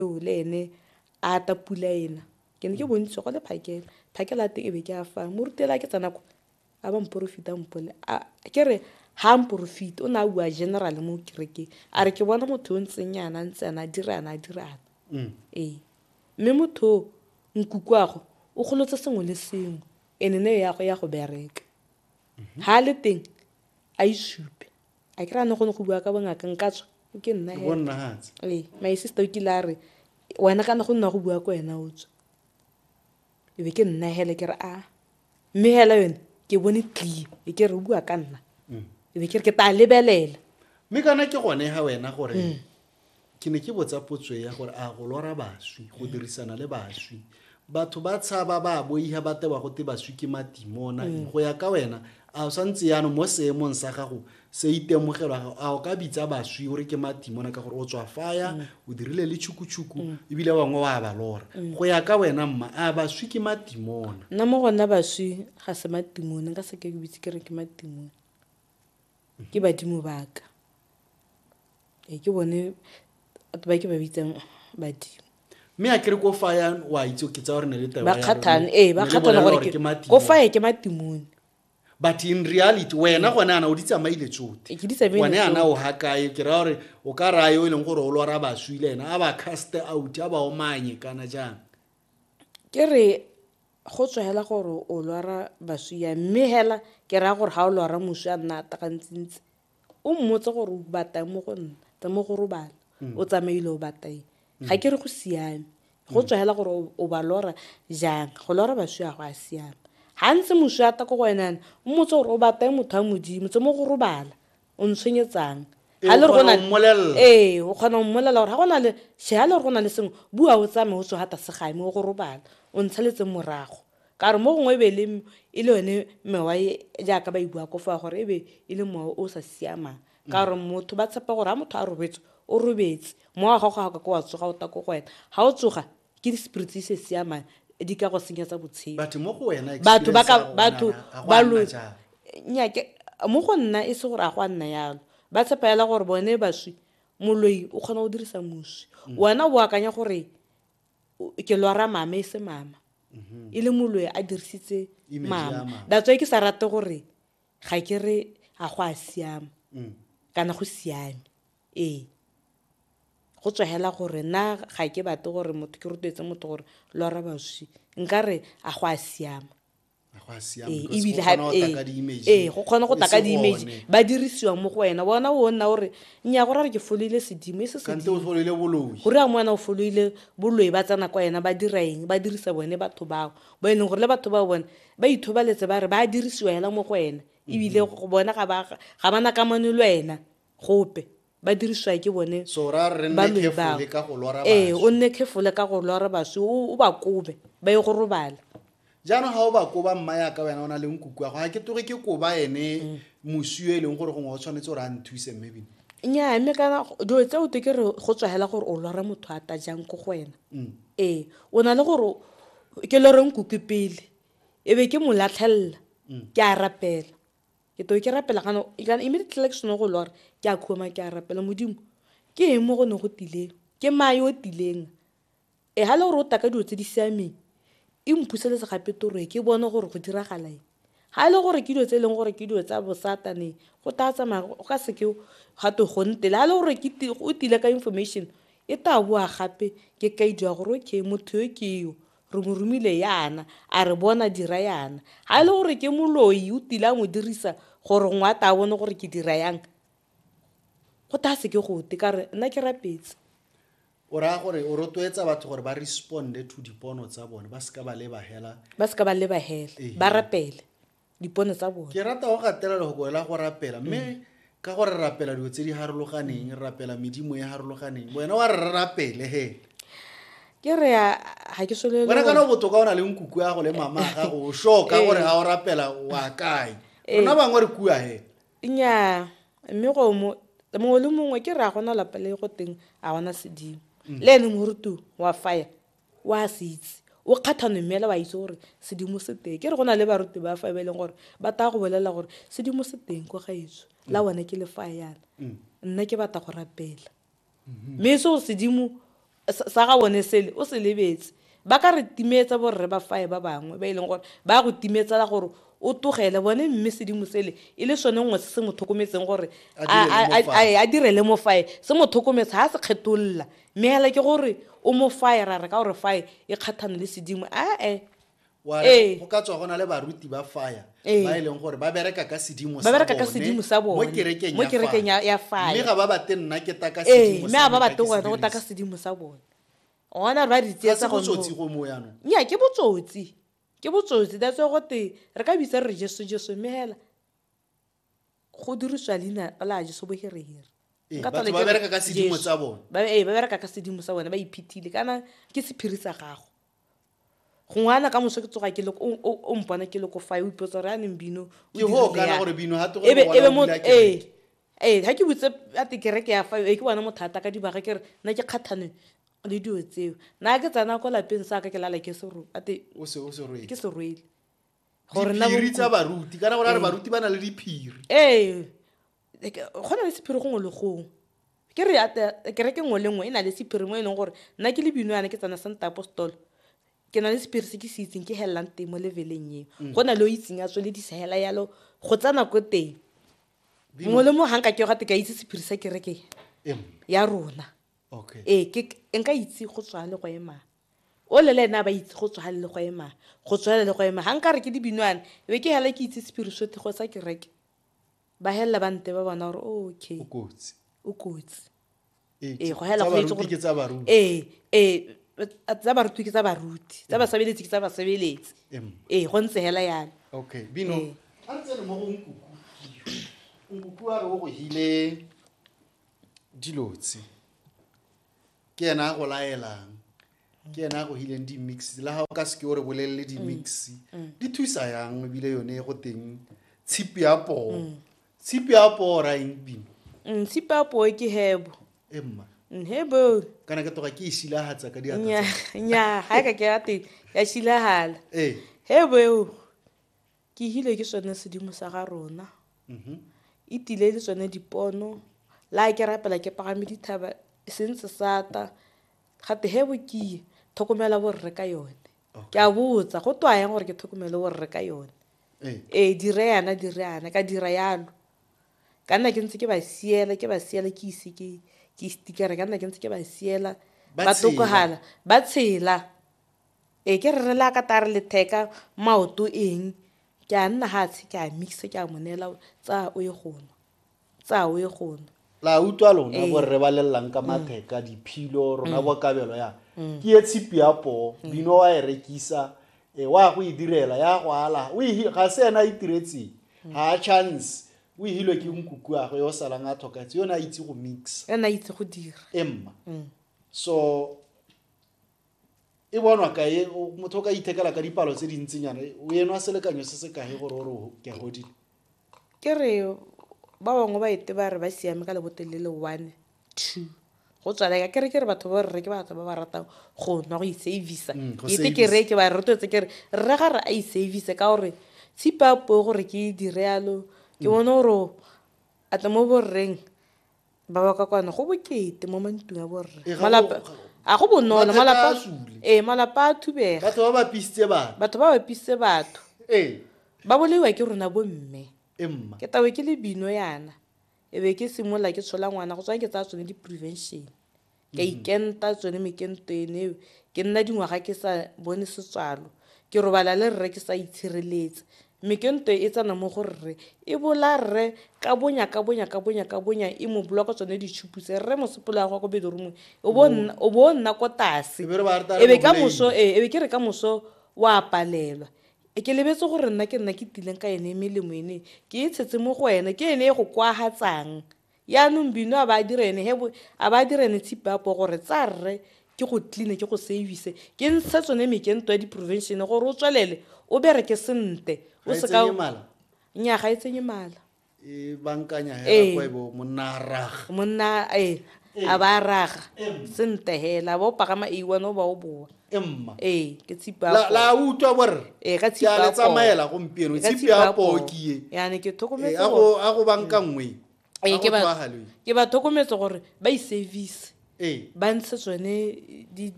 eo le ene a ta pula ena ke ne ke bontsi go le phakela phakela teng e be ke a fa morutela ke tsena ko a ba mporofita mpone ke re ha mporofita o ne a bua general mo kerekeng a re ke bona motho o ntseng yana ntse ana dira ana dira ana mm. ee mme motho o nkukwago o golotse sengwe le sengwe ene ne ya go ya go bereka ha le teng a isupe a kry-a ne gone go bua ka bongaka nka tswa o ke nna Ke bonna hatse. ee my sister o kile a re wena kana go nna go bua ko wena o tswa e be ke nna hele ke re a mme hela yone ke bone tlie e ke re o bua ka nna e be ke re ke tla lebelela Mme kana ke gone ha wena gore Ke ne ke botsa potso ya gore a go lora baswi, go dirisana le baswi. Batho ba tshaba ba boiha ba tewa go te baswi ke matimona. Mm. Go ya ka wena, a o sa ntse yano mo seemong sa gago se itemogelwa gago, a o ka bitsa baswi o re ke matimona ka gore o tswa faya, mm. o dirile le tšhukutshuku, mm. ebile bangwe wa ba lora. Go ya ka wena mma, a baswi ke matimona? Nna mo gona baswi ga se matimona, ka se ke ke bitse ke re ke matimona. Ke badimo ba ka. Ee, ke bone batho ba ke ba bitsang badimo. mme a kere ko fa ya wa itse ke tsaya gore ne le tayo ba kgathane ee ba kgathane gore ke matimo ko faye ke matimone but in reality wena gone ana o di tsamaile tsote Ee, ke di tsamaile gone ana o hakae ke raya gore o ka raya yo e leng gore o lora baswi le ena a ba cast out a ba omanye kana jang ke re go tswa hela gore o lwara baswi yang mme hela ke raya gore ga o lwara moswi a nna atakantsintsi o mmotse gore o batang mo go nna tsa mo go robala mm. o tsamaile o batang mm. ga ke re go siame go tswa hela gore o ba lora jang go lora baswi a go a siame gantsi moswi ata ko go wenana o mmotse gore o batang motho wa modimo tse mo go robala o ntshwenyetsang ga le go na ee o kgona go mmolelela gore ga go na le she ga le gore go na le sengwe bua o tsame o tswe ga tase gae mo go robala o ntshaletseng morago ka gore mo gongwe ebe le e le yone mewa e jaaka ba e bua ko fa gore ebe e le mowa o sa siamang ka gore motho ba tshepa gore ga motho a robetse o robetse mowa ga gago ga ka ko wa tsoga o ta ko go wena ga o tsoga ke di spirits se siamang di ka go senyetsa botshelo batho mo go wena batho ba ka batho ba lo nyake mo go nna e se gore a go a nna yalo ba tshepa yala gore bone baswi moloi o kgona go dirisa moswi mm. wena o akanya gore ke lwara mama e se mama mm-hmm. e le moloi a dirisitse mama datswa ke sa rate gore ga ke re a go a siama mm. kana go siame Ee, go tswa hela gore na ga ke batle gore motho ke rotloetse motho gore lora baswi nkare a go a siama ee go kgona go taka di-image ba dirisiwa mo go wena bona o nna gore nya go rare ke foloile sedimo e se sedimogore ya mo wena o foloile boloi ba tsena kwa wena ba dira eng ba dirisa bone batho bao bo e leng gore le batho bao bone ba ithobaletse ba re ba dirisiwa hela mo go wena ebile go bona ga ba na kamano le wena gope ba dirisiwa ke bone ba loi bao ee o nne khefole ka go lora baswi o ba kobe ba ye go robala jaanong ga o ba koba mma yaka wena o na leng kuku ya go ga ke toge ke koba ene mm. moswi yo e leng gore gongwe o tshwanetse gore a nthuse mme bine nyaa mme kana dilo tse o te ke re go tswagela gore o lora motho a ta jang ko go wena mm. ee o na le gore ke loreng kuku pele e be ke mo latlhelela mm. ke a rapela ke to ke rapela kana kana immediately like sone go lora ke a khoma ke a rapela modimo ke eng mo go ne go tileng ke mae o tileng e ga le gore o taka dilo tse di siameng e mphuseletse gape toroe ke bone gore go diragala eng ga e le gore ke dilo tse e leng gore ke dilo tsa bosatane go taya tsamaya go ka seke ga to go ntele ga e le gore o tile ka information e taya boa gape ke kaidi ya gore okay motho yo ke yo Re mo romile yana, a re bona, dira yana. Ga e le gore ke moloi, o tile a mo dirisa gore ngwe a ta a bone gore ke dira yang. Go ta se ke gote, ka re nna ke rapetse. o raya gore o rotloetsa batho gore ba responde to dipono tsa bone ba seka ba leba hela Ba seka ba leba hela, ba rapele. dipono tsa bone ke rata go gatela lehoko la go rapela mme mm. ka gore rapela dilo tse di harologaneng mm. rapela medimo e harologaneng wena wa re rapele he ke re ga ke solele wena kana botoka o na le nkuku ya go le mama ga go sho ka gore ga o rapela wa kae eh. rona bangwe re kua he nnyaa mme go mo mongwe le mongwe ke re a gona lapele go teng a gona sedimo mm. le ene morutu wa fire o a se itse o kgatha nomela wa itse gore sedimo se teng ke re go na le baruti ba fa e ba e leng gore ba taya go bolelela gore sedimo se teng kwa gaetso la mm. bone ke le fa yana mm. nna ke batla go rapela mm-hmm. mme e se gore sedimo sa ga bone sele o se lebetse ba ka re timetsa borre ba fae ba bangwe ba e leng gore ba go timetsela gore o togele bone mme sedimo sele e le sone nngwe se se mo tlhokometseng gore a direle mo fae se mo tlhokometse ga se kgetolola mme hela ke gore o mo faye ra re ka gore faye e kgathane le sedimo ae Wa re, Ee. go ka tswa go na le baruti ba faya Ee. ba e leng gore ba bereka ka sedimo Ba bereka ka bone sedimo sa bone, mo kerekeng mo ya kerekeng fire. ya- ya fire. mme ga ba bate nna ke taka ee sedimo mme sa a ba me, ka bate ke se gone go taka dirise. sedimo sa bone gona re ba re Ga se tsietsa gone botsotsi go- go mo yanong nya ke botsotsi ke botsotsi that's why gote re ka bitsa re re jesu jesu mme hela go dirisiwa leina la jeso bohereheri Ee, Nka batho tole ba ke re, bereka ka sedimo Jesu. tsa bone ba ee, ba bereka ka sedimo sa bone ba iphethile kana ke sephiri sa gago gongwe ana ka moso ke tsoga ke le ko- o- o- o mpona ke le ko fae o ipotsa gore a neng bino o ke dirile hoo kana yang? gore bino ha te gore Ebe- ngwana ebe o mo- bula kereke. ee ee ga ke botse a te kereke ya fae ee ke bone mothata ka dibaga ke re nna ke kgathane le dilo tseo na ke tsena ko lapeng sa ka ke lala ke sero a te o se o se roe ke se rwele gore na diphiri tsa baruti kana gore a re baruti ba na le diphiri ee like, go na le sephiri gongwe le gongwe ke re ate- kereke nngwe le nngwe e na le sephiri mo e leng gore nna ke le binoyane ke tsana santa apostolo ke na le sephiri se ke se itseng ke helelang teng mo leveleng eo go na le o itseng a tswele disegela yalo go tsana ko teng mongwe le mongwe ga nka ke gate ka itse sephiri sa kereke Em, ya rona okay ee ke- nka itse go tswale go emang Ole le ene a ba itse go tswala le go ema, go tswala le go ema. Ga nka re ke dibinwana, e be ke hala ke itse sepiriswethigo sa kereke. Ba helela ba nte ba bona gore okay. O kotsi. O kotsi. Ee, ee go hela go itse gore ke tsa baruti ee ee tsa baruti ke tsa baruti tsa basebeletsi ke tsa basebeletsi ee go ntse hela yana okay bino a re tsene mo go nkuku nkuku a re o go hile dilotse ke ena a go laelang ke ena a go hileng di-mix la ga o ka seke o re bolelele di-mix mm. mm. di thusa yang ebile yone go teng tshipi ya poo mm. tshipi ya poo ra eng bino tshipi ya poo ke hebo emma hebo kana ke toga ke e shilagatsa ka diatnya ga e ka ke ya teng ya shilagala ee. hebo eo Ke hile ke sone sedimo sa ga rona. E tile le tsone dipono. La ke rapela ke pagame dithaba e se ntse sata. Gate he bokiye thokomela borre ka yone. Ke a botsa go twa yang gore ke thokomele borre ka yone. Ee dire yana dire yana ka dira yalo. Ka nna ke ntse ke ba siela ke ba siela ke ise ke ke stikere ka nna ke ntse ke ba siela ba tokogala ba tshela. Ee ke re re le a ka tare letheka maoto eng ke a nna ga tshe ke a mixa ke a mo neela tsaya o ye gonwa tsaya o ye gonwa la utlwa lona bo rre ba lelelang ka matheka diphilo rona bo kabelo ya ke ye tshipi ya poo bino wa e rekisa e wa go e direla ya go ala o e ga se ena a itiretseng ga a chance o ihilwe ke nkuku a go yo salang a tlhoketse yone a itse go mix ena itse go dira emma so e bonwa kae motho o ka ithekela ka dipalo tse dintsinyana o enwa selekanyo se se kae gore o re ke a godile ke re ba bangwe ba ete ba re ba siame ka lebotele le one two go tswaleka ke re ke re batho ba rre ke batho ba ba ratang go nwa go isavisa mm, ete ke re ke ba re rotetse ke re rre ga re a isavise ka gore tshipa po gore ke direalo ke mm. bone gore ate mo borreng ba ba ka kwano go bokete mo mantung a borre Ee, ga Malapa- go- a go bonolo Mathata malapa a sule. ee malapa a thubega batho ba ba pisitse bana batho ba bapisitse batho ee ba bolaiwa ke rona bomme e mma ke tawe ke le bino yana e be ke simolola ke tshola ngwana go tswa ke tsaya tsone di-prevention ka mm-hmm. ikenta tsone mekento ene eo ke nna dingwaga ke sa bone setswalo ke robala le rre ke sa itshireletse mekento e tsena mo go rre e bola rre ka bonya ka bonya ka bonya ka bonya e mo bola ka tsone ditšhupu tse rre mosepolo ya gwa ko bedoromong o bo mm-hmm. nna ko tase e be ka moso ee e be ke re ka moso wa palelwa e ke lebetse gore nna ke nna ke tileng ka ene e melemo ene ke e tshetse mo go ene ke ene e go kwagatsang yaanong bino a ba a direne he a ba a direne tshipe a po gore tsa rre ke go cleane ke go service ke ntshe tsone mekento ya di-prevention gore o tswelele o bereke sente o Ga e seka tsenye mala? nya ga e tsenye mala e bankanya Ee. hela kgwebo monna a raga monna ee a ba a raga sente hela ba o pagama a one o ba o boa emma ee ke tshipa la la utlwa borre ee ka tshipa le tsamaela gompieno tshipi ya pokie yane ke tlhokometse a go a go banka mm. nngwe ee ke ba ke ba tlhokometse gore ba i service ee ba ntshe tsone di